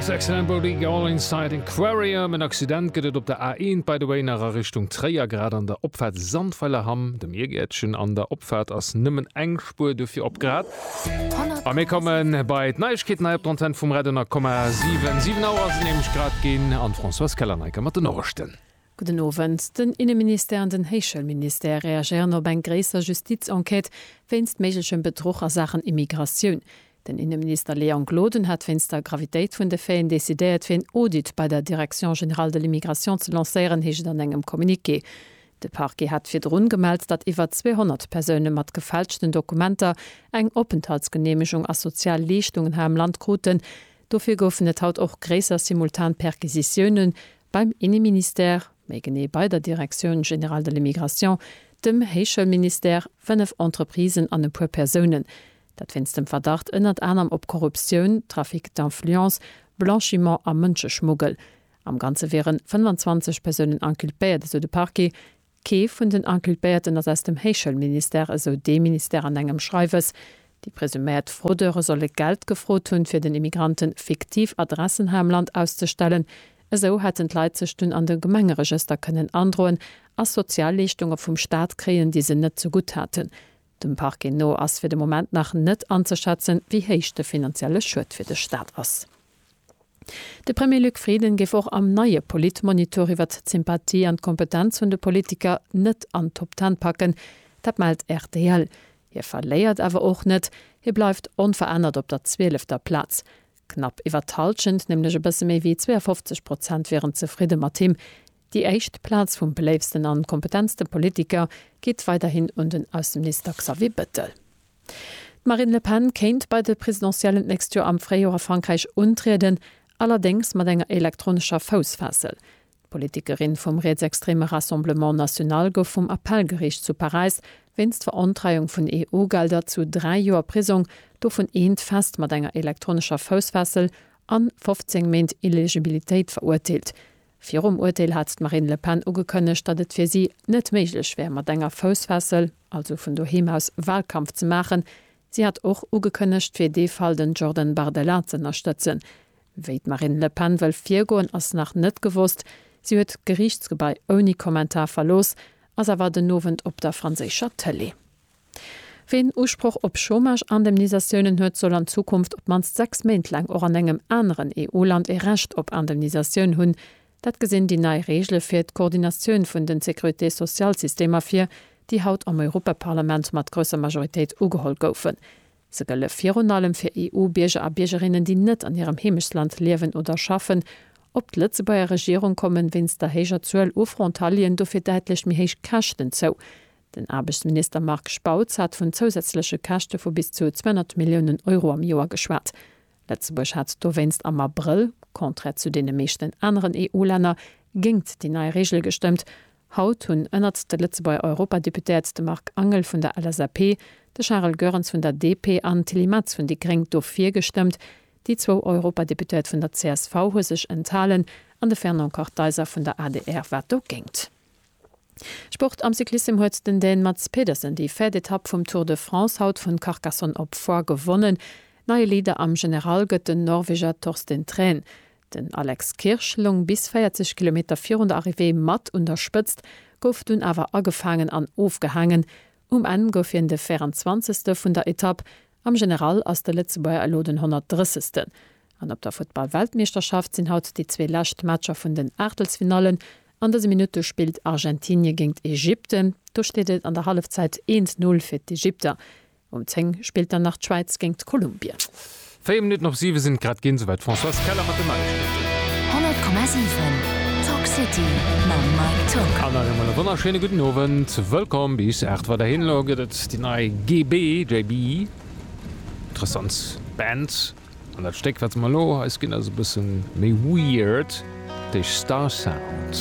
Yes, excellent Bodig, All Inside Aquarium. En Accident gëtt et op der A1 by the way nach a Richtung Tréier, grad an der Opfaart Sandweiler Hamm, dem Biergäertchen. An der Opfaart ass nëmmen eng Spuer dofir op grad. A mir kommen bei d'Neiegkeeten hei op der Antenn vum Radio 10,7. 7 Auer sinn nämlech grad ginn an d'Françoise Keller-Neiker mat den Norechten. Gudden Owend. Den Inneministère an den Héichschoulministère reagéieren op eng gréisser Justiz-Enquête wéinst méiglechem Bedruch a Saachen Immigratioun. Den Inneminister Léon Gloden hat wéinst der Gravitéit vun de Faiten decidéiert, fir een Audit bei der Direction générale de l'immigration ze lancéieren, heescht et an engem Communiqué. De Parquet hat virdrun gemellt, datt iwwer 200 Persoune mat gefälschten Dokumenter eng Openthaltsgeneemegung a sozial Leeschtungen hei am Land kruten. Dofir goufen et haut och gréisser simultan Perquisitiounen beim Inneministère, méi genee bei der Direction générale de l'immigration, dem Héichschoulministère, fënnef Entreprisen an e puer Persounen. Dat wéinst dem Verdacht ënnert anerem op Korruptioun, Trafic d'influence, Blanchiment a Mënscheschmuggel. Am Ganze wieren 25 Persounen inculpéiert, esou de Parquet. Kee vun den Inculpéierten ass aus dem Héichschoulministère, esou dee Ministère an engem Schreiwes. Déi presuméiert Fraudeure solle Geld gefrot hunn, fir den Immigrante fiktiv Adressen hei am Land auszestellen. Esou hätten d'Leit sech dunn an de Gemengeregëster kënnen androen a Sozialleeschtunge vum Staat kréien, déi se net zegutt haten. Dem Parquet no ass fir de Moment nach net anzeschätzen, wéi héich de finanzielle Schued fir de Staat ass. De Premier Luc Frieden géif och am neie Politmonitor iwwert d'Sympathie an d'Kompetenz vun de Politiker net an d'Top Ten packen. Dat mellt rtl. Hie verléiert awer och net, hie bleift onverännert op der zwielefter Plaz. Knapp iwwert d'Hallschent, nämlech e bësse méi wéi 52 Prozent, wieren zefridde mat him. Déi éischt Plaz vum beléiftsten an kompetentste Politiker geet weiderhin un den Ausseminister Xavier Bettel. D'Marine Le Pen kéint bei de Presidentiellen d'nächst Joer am Fréijoer a Frankräich untrieden, allerdéngs mat enger elektronescher Foussfessel. D'Politikerin vum rietsextreme Rassemblement National gouf vum Appellgeriicht zu Paräis wéinst Verontreiung vun EU-Gelder zu dräi Joer Prisong, dovun eent fest mat enger elektronescher Foussfessel, an 15 Méint Illegibilitéit verurteelt. Virum Urteel hat d'Marine Le Pen ugekënnegt, datt et fir si net méiglech wär, mat enger Foussfessel, also vun doheem aus, Wahlkampf ze maachen. Si hat och ugekënnegt, fir dee Fall den Jordan Bardella ze ënnerstëtzen. Wéi d'Marine Le Pen wëll virgoen, ass nach net gewosst. Si huet d'Geriichtsgebai ouni Kommentar verlooss, ass awer den Owend op der franséischer Tëlee. Ween Usproch op Chômage-Indemnisatiounen huet, soll an Zukunft op d'mannst sechs Méint laang och an engem aneren EU-Land ee Recht op Indemnisatioun hunn. Dat gesinn déi nei Reegele fir d'Koordinatioun vun den Sécurité-Sociale-Systemer vir, déi haut am Europaparlament mat grousser Majoritéit ugeholl goufen. Se gëlle virun allem fir EU-Bierger a Biergerinnen, déi net an hirem Heemechtsland liewen oder schaffen. Op d'Lëtzebuerger Regierung komme wéinst der héijer Zuel u Frontalieren dofir däitlech méi héich Käschten zou. Den Aarbechtsminister Marc Spautz hat vun zousätzleche Käschte vu bis zu 200 Milliounen Euro am Joer geschwat. Lëtzebuerg hat dowéinst am Abrëll, contraire zu deene meeschten aneren EU-Länner, géingt déi nei Reegel gestëmmt. Haut hunn ënnert de Lëtzebuerger Europadeputéiert de Marc Angel vun der LSAP, de Charel Goerens vun der DP an d'Tilly Metz vun déi gréng dofir gestëmmt. Déi zwou Europadeputéiert vun der csv hu sech enthalen an de Fernand Kartheiser vun der adr war dogéint. Sport am Cyclissem huet den Dän Mads Pedersen déi véiert Etapp vum Tour de France haut vun Carcassonne op Foix gewonnen. Neie Leader am General gëtt den Norweger Torsten Thrän. Den Alex Kirsch loung bis 40 Kilometer virun der Arrivée mat un der Spëtzt, gouf dunn awer agefaangen an ofgehaangen. Um Enn gouf hien de 24. vun der Etapp Am General ass de Lëtzebuerger elo den 130. An op der Futtball-Weltmeeschterschaft sinn haut déi zwee lescht Matcher vun den Aachtelsfinallen. An dëse Minutte spillt Argentinie géint Ägypten. Do steet et an der Hallefzäit 1, 0 fir d'Ägypter. Um 10 spillt dann nach d'Schwäiz géint Kolumbien. Véier Minutten op siwe sinn et grad ginn. Souwäit d'Françoise Keller mat den Neiegkeeten. 100,7 Talk City mam Mike Tock. An nach eemol e wonnerschéine gudden Owend. Wëllkomm bis 8 weiderhin. Elo gëtt et Déi nei GB, JB, interessant Band an dat Stéck wat se mer elo eis ginn ass e bësse méi weird, déi Star Sound.